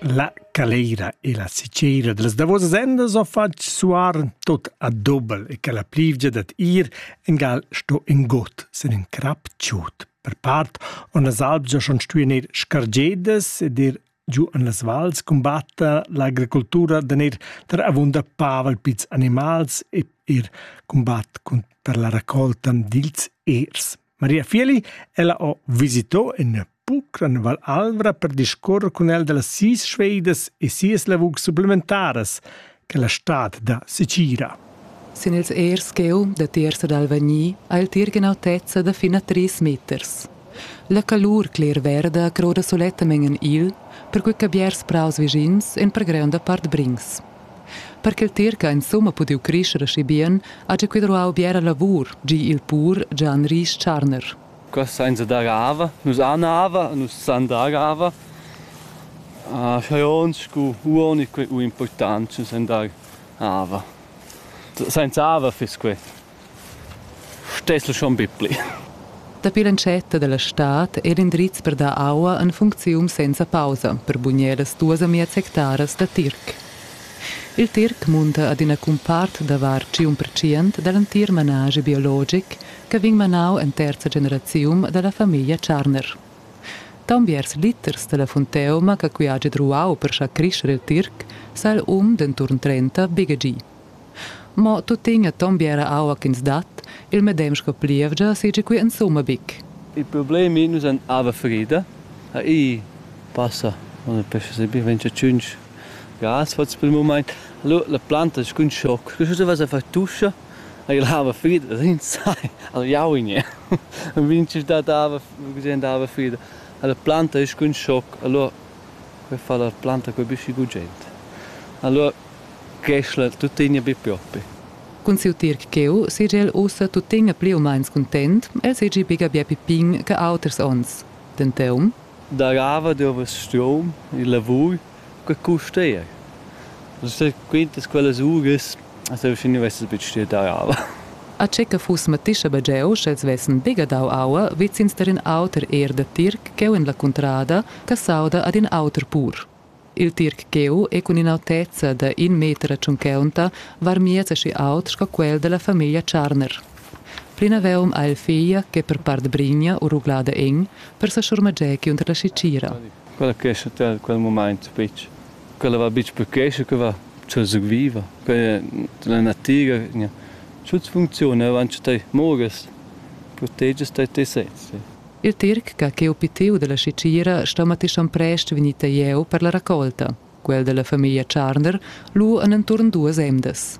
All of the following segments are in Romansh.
La caleira e la sicera dals davosas endas ho fatg suar tot a dobel e che la plivgia dad ir in gal sto in got sin in crap tschut. Per part on las albgia schon stuì neir scargedas ed ir giu en las vals cumbatta l'agricultura da neir tar avunda pavel pizs animals e ir cumbat per la raccolta dils ers. Maria Fieli, ella ho visito in pucran Val Alvra per discorrer con el della sis schweidas e sias lavurs supplementaras che la stad da Sicira. Sin ils ers cheu da terza d'Alvagni ha il tir gen'autezza da fin a tris meters. La calur cler-verda croda solettamen en il, perquei che biars praus vischins en per greunda part brings. Per ch'el tirca insumma pudiu crescher aschi bien, ha gia quei ruau biera lavur, gi il pur Gian Ries Tscharner. Quest sainza dar ava, nus han ava, nus san dar ava. Scha ons scu uonig quei u important, nus san dar ava. Sainza ava fiss quei. Stessel schon bipli. Dapi l'entschatta dalla stad ei l'indriz per dar aua en funcziun senza pausa per bugner las duas amias hectaras da tirc. Il tirc munta ad ina cumpart da var tschient percent dall'entir manaschi biologic che vegn manau en terza generaziun dalla famiglia Tscharner. Taunbiers liters dalla funteuma che qui hagi druau per schar crescher il tirc sa il um denton trenta bigegi. Mo tuttina tombi era aua ch'ins dat, il medem sco plievgia seigi quei insumma buc. Il problemi, Nus ein ava frida, ha ei. Passa on il pesce sebi ventg tschunc grass fatgs per il mument. Lu la planta scun schoc. Lu stueva sa far tuscha, ei l'ava frida, rinzai, al jaugnie. Vinci dat ava, gesend ava frida. La planta ei scun schoc, allora per far la planta cun büschi gugent. Alura creschla tuttegna be propi. Cun siu tirc cheu seigi el ussa tuttegna pli u meins cuntent, el seigi biga bia pipin che auters onns. Denton. Darava dovess strom e lavur che custa er. Quintas quellas uras Seu schi nu vessas betg stuieu dar aua. A che che fuss mattischa be jeu, sch'els vessen degadau aua vezins tar in auter ierda tirc cheu en la cuntrada, che s'auda ad in auter pur. Il tirc cheu è cun in'autezza da in meter a tschuncaunta varmiez aschi aut sco quel dalla famiglia Tscharner. Plinaveuum ha el figlia che per part brigna u ruglada en, per sa schurmager cunter la schitgira. Quella quescha a quel mumaint betg. Quella va buc per quescha che va cun surviver, per la natiga gnà. Tuot funcziuna aunc a tei. Mogas, protegias tei te sezs. Il Tirc ch'ha cheu pitiu dalla scecira sto Matischan prest vegnir jeu per la raccolta. Quel dalla famiglia Tscharner, lu en enturn duas emdas.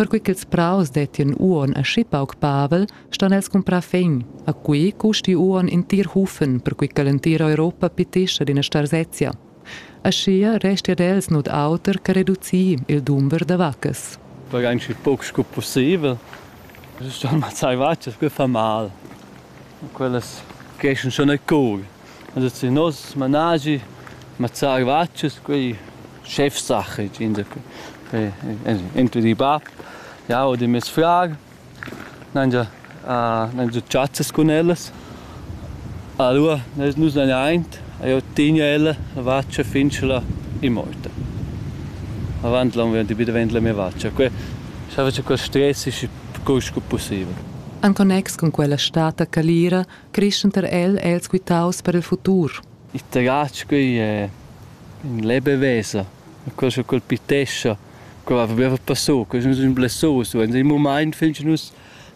Perquei ch'ils praus dettien uonn aschi pauc pavel, ston els cumprar fegn. A quei custi uonn in tier Hufen, perquei che l'entira Europa pitescha d'ina starsezia. Aschia resti ad els nuot auter che reducir il dumber da vaccas. Perquei anc pauc sco pusseivel. Ston mazzai vatg, che fa mal. Quellas creschan schon a cor. Adesso in nos managi mazzà gvatschas, quei Chefsache insacura. Entri di bab, jau ed mes frar n'haja già chazzas cun ellas. Alura nus hain aint e jau tegna ella la vatscha fin che la è morta. Avant l'on vegn davent la mia vatscha. Quei sa fetscha quel stress sco possibel. En connex cun quella stata calira creschenter el els quitaus per il futur. Il terratsch quei è in lebe vesa, quel che colpitescha, quel va per passo, quel è un blessoso, in il moment fin che nus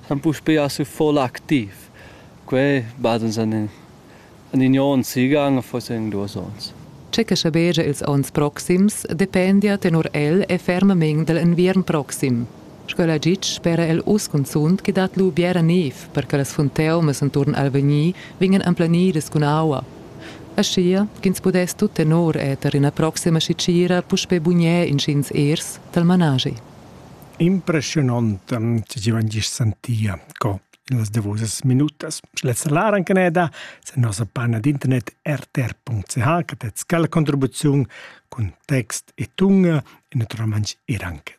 siamo puspei a su voll aktiv. Quei bad uns an in onn sigan, forse in duas onns. Che che schabegia ils onns proxims dependia tenor el e fermament dell enviern proxim. Sco'la gitg spera el uss cunzunt che dat lu biera niev per che las funteumas enturn Alvegni vegnan emplanidas cun aua. Aschia ch'ins pudess tut tenor eter ina proxima sitgira puspei bugner inschigns ers dal manaschi. Impressionant che ti van gist sentia co in las davosas minutas. Lezza lar anche neda sen nossa panna d'internet rtr.ch che tet scala contribuziun cun text e tunga e naturalmente er anche